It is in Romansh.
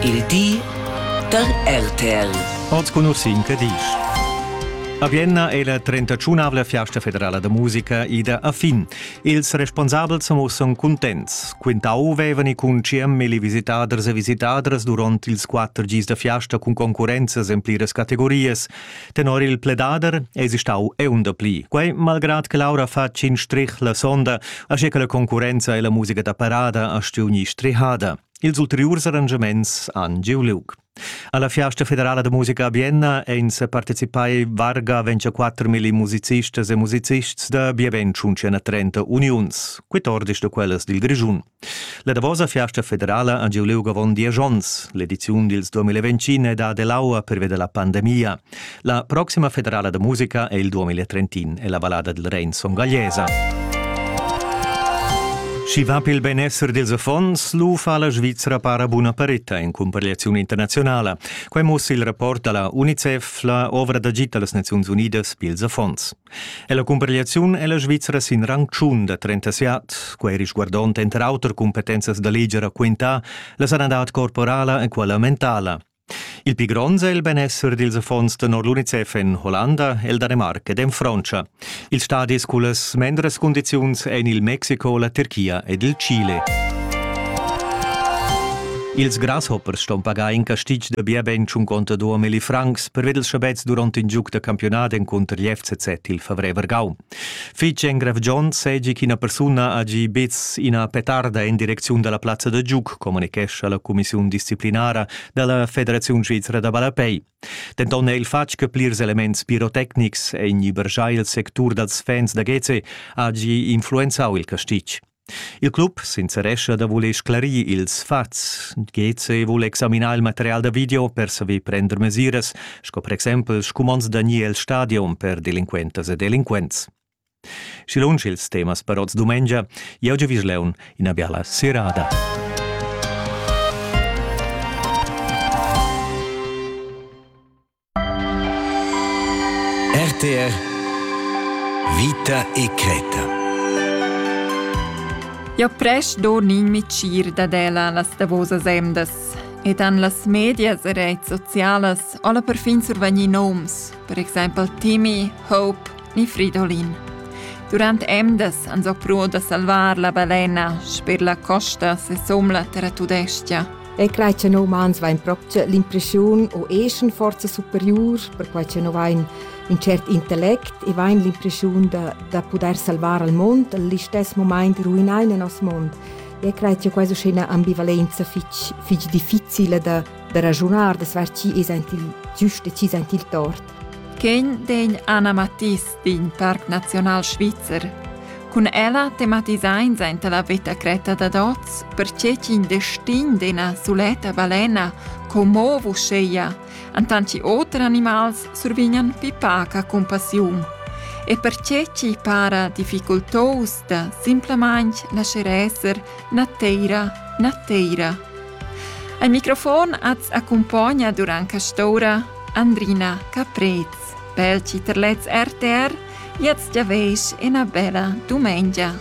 Il di da RTL. Oz conoscin che disch. A Vienna è la 31avla fiasta federala da musica ida a fin. Ils responsabels mussan cuntents. Quintau vevani cun CM e visitaders e visitadras durant ils quatter gis da fiasta cun concurrenzas en pliras categorias, Tenor il pledader esi stau eun dapli. Quei malgrad che Laura fa tschin strich la sonda, asche che la concurrenza e la musica da parada ha stiuni strihada. Ils ulteriurs arrangiaments han giu liug. Alla Fiasta federala de musica a Vienna ein se partecipai varga 24 mili musicistas e musicists da bien 130 uniuns, 14 de quellas dil Grischun. La davosa fiasta federala ha giu liug avon diesch onns. L'ediziun dils 2020 è da dell'aua pervia la pandemia. La proxima federala da musica è il 2030 e la ballada del Rein Son Gagliesa. Schi va pel benessere dels affons, lu fa la Svizzera para buna paretta in comparegliazione internazionale. Quai mussa il rapport dalla UNICEF, la ovra d'agit dallas Nazioni Unidas pils affons. E la cumparegliaziun è la Svizra sin rang tschun da 37. Quai risguardond enter auter cumpetenzas da leger quintà, la sanadad corporala e quella mentala. Il pli grond è il benessere dils affons tenor l'UNICEF en Hollanda, el Danemarc ed en Frontscha. Ils stadis cullas mendras cundiziuns ein il Mexico, la Tirchia ed il Chile. Ils grasshoppers ston pagar in castig da bia ben cinquanta duamilli francs per vedels schabets durant in giug da campiunat encunter l'FCZ il favrer Vargau. Fitg engrevgiont segi ch'ina persuna ha gi bez ina petarda en direcziun dalla plazza da giug, communichescha la cumissiun disciplinara dalla Federaziun svizra da ballapei. Denton è il fatg che plirs elements pirotecnics en ibergiai il sectur dals fans da Geze ha gi influenzau il castig. Il club sincerescha da voler sclarir ils fats. GC vul examinar il material da video per saver prender mesiras, sco per exempel scumonds da ni el stadion per delinquentas e delinquents. Schi lunsch ils temas per oz dumengia, jau giavisch leun ina biala serada. RTR Vita e creta Ja prest do nin micir dad ella las davosas emdas ed han las medias e reits socialas alla perfin survegni noms, per exempel Timmy, Hope ni Fridolin. Durant emdas han so pruo da salvar la balena sper la costa se somla terra tudestia. E quai che noi umans vain propcha l'impreschiun o eschan forza superiur, perquai che noi vain ün cert intellect e vain l'impreschiun da, da pudair salvar al mond, al istess momaint ruinain il nos mond. E cred che questa è una ambivalenza fitch, fitch difficile da, da ragionare, da sverci e sentir giusto e ci sentir tort. Quegn degn Anna Mattis in parc nazional svizzer. Cun ella tematisains aint la veta cretta dad hoz, perche ch'in destin d'ena suletta balena commo vusceia, antanti oter animals survignan pipaca compassiun. E perche ci para difficultos da simplamain lascer esser na teira na teira. Al microfon az accompagna durant castora Andrina Caprez. Per chi terlets RTR, jetzt ja veis ina bella dumengia.